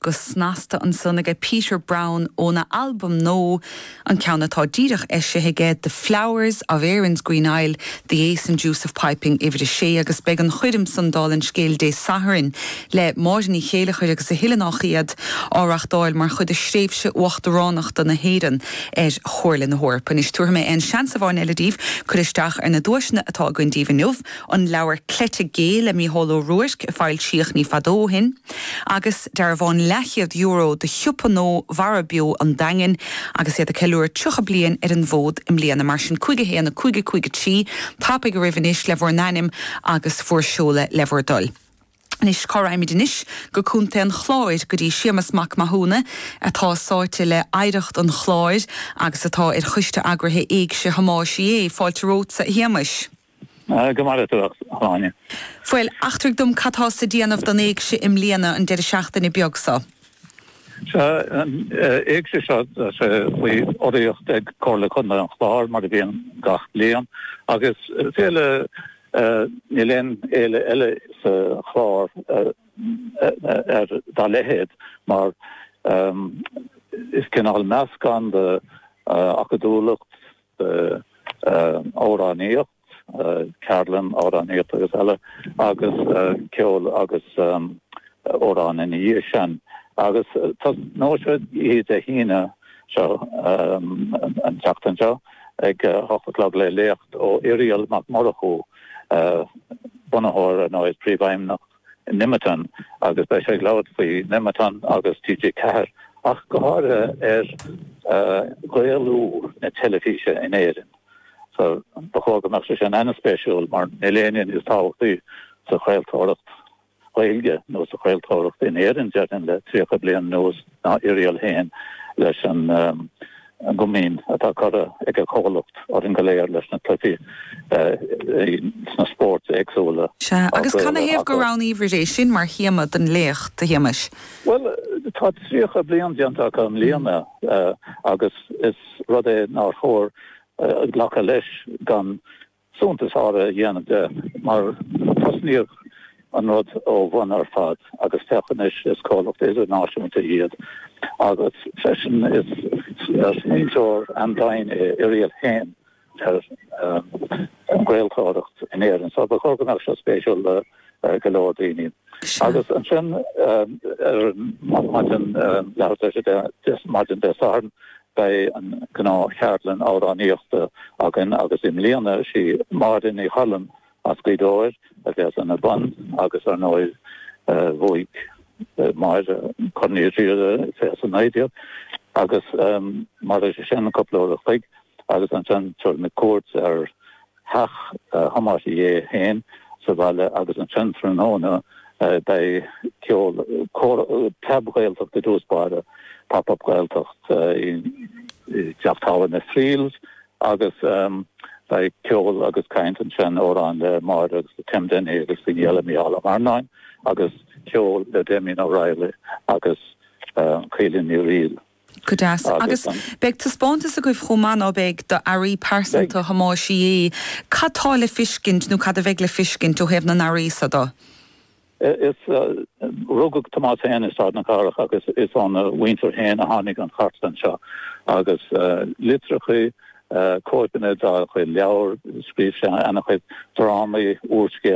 Go snasta ansan ag Peter Browne óna albam nó an ceann atá díreach eisithe aige, The Flowers of Erin's Green Isle, The Ace and Deuce of Piping, uimhir a sé, agus beidh an choirm san Dúil sa Scéal Dé Sathairn le Máire Ní Chéilleachair agus a thuilleadh nach iad á reachtáil mar chuid de thréimhse uachtaránachta na hÉireann ar Chomhairle na hEorpa. Anois tabharfaidh mé aon seans amháin eile daoibh cur isteach ar na duaiseanna atá againn daoibh inniu. an leabhar Cleite Gé le Mícheál Ó Ruairc a foilsíodh ní fada ó shin, agus dearbhán leathchéad euro do shiopa Ó Mhara Beo an Daingin agus iad ag ceiliúradh 30 bliain ar an bhfód i mbliana. Mar sin, 5 1 5 5 3, tapa go raibh anois le bhur n-ainm agus bhur seoladh le bhur dtoil. Anois, cá raghaimid anois? Go Contae an Chláir, go dtí Séamas Mac Mathúna, atá sáite le hoidhreacht an Chláir agus atá ar choiste eagraithe Éigse Thomáis Uí Aodha. Fáilte romhatsa, a Shéamais! Go maire tú, a Áine. Bhuel, eachtraigh dom cad tá sa déanamh don Éigse i mbliana, an deireadh seachtaine beag seo. Tá an Éigse seo faoi urraíocht ag Comhairle Contae an Chláir, mar a bhíonn gach bliain, agus féile, níl aon fhéile eile sa Chlár dá leithéid, mar is cineál meascán de acadúlacht, de amhránaíocht, ceardlann amhránaíocht agus eile agus ceol agus amhráin ina dhiaidh sin agus tosnóidh siad Dé hAoine seo, an tseachtain seo, ag a hocht a chlog le léacht ó Irial Mac Murchú, bunaitheoir, nó príomhfheidhmeannach, Nemeton agus beidh sé ag labhairt faoi Nemeton agus TG4 ach go háirithe ar Ghaelú na teilifíse in Éirinn. So ba chóir go mbeadh sé sin an-spéisiúil mar níl éinne níos tábhachtaí sa chraoltóireacht Ghaeilge nó sa chraoltóireacht in Éirinn déarfainn le 30 bliain anuas. ná Irial fhéin leis an gcomaoin atá curtha ag a chomhlacht orainn go léir leis na cluichí sna spóirt éagsúla. Sea, agus canathaobh gur roghnaíobhair é sin mar théama don léacht, a Shéamais? Bhuel, tá tríocha bliain déanta acu i mbliana agus is rud é nár chóir glacadh leis gan suntas a dhéanamh de, mar tosnaíodh an rud ó bhun ar fad agus féach anois, is comhlacht idirnáisiúnta iad agus freisin is smaointeoir an-domhain é Irial féin ar an gcraoltóireacht in Éirinn, so ba chóir go mbeadh seo spéisiúil. go leor daoine. Agus ansin ar maidin Dé Sathairn beidh an gnáth cheardlann amhránaíochta againn agus i mbliana sí Máire Ní Choilm as Gaoth Dobhair a bheas ina bun agus ar ndóigh bhuaigh Máire Corn Uí Riada 2019 agus mar sin cúpla uair a chloig agus ansin tabharfaimid cuairt ar Theach Thomáis Uí Aodha fhéin sa bhaile agus ansin tráthnóna beidh ceol, cór, preab Ghaeltacht i dtús báire, Pop Up Gaeltacht, i dTeach Tábhairne Friels agus beidh ceol agus caint ansin amhráin le Máire agus le Tim Dennehy agus daoine eile, Micheál Ó Marranáin agus ceol le Damien O'Reilly agus Caoilfhionn Ní Fhrighil. Go deas. Agus beidh taispeántas agaibh chomh maith, ná beidh, d'earraí pearsanta Thomáis Uí Aodha. Cad tá le feiscint nó cad a bheidh le feiscint ó thaobh na n-earraí so do? Is rugadh Tomás fhéin i Sráid na Cathrach agus is óna mhuintir fhéin a tháinig an chartlann seo agus litreacha, cóipeanna dá chuid leabhar, scríobh sé ana chuid drámaí, úrscéalta,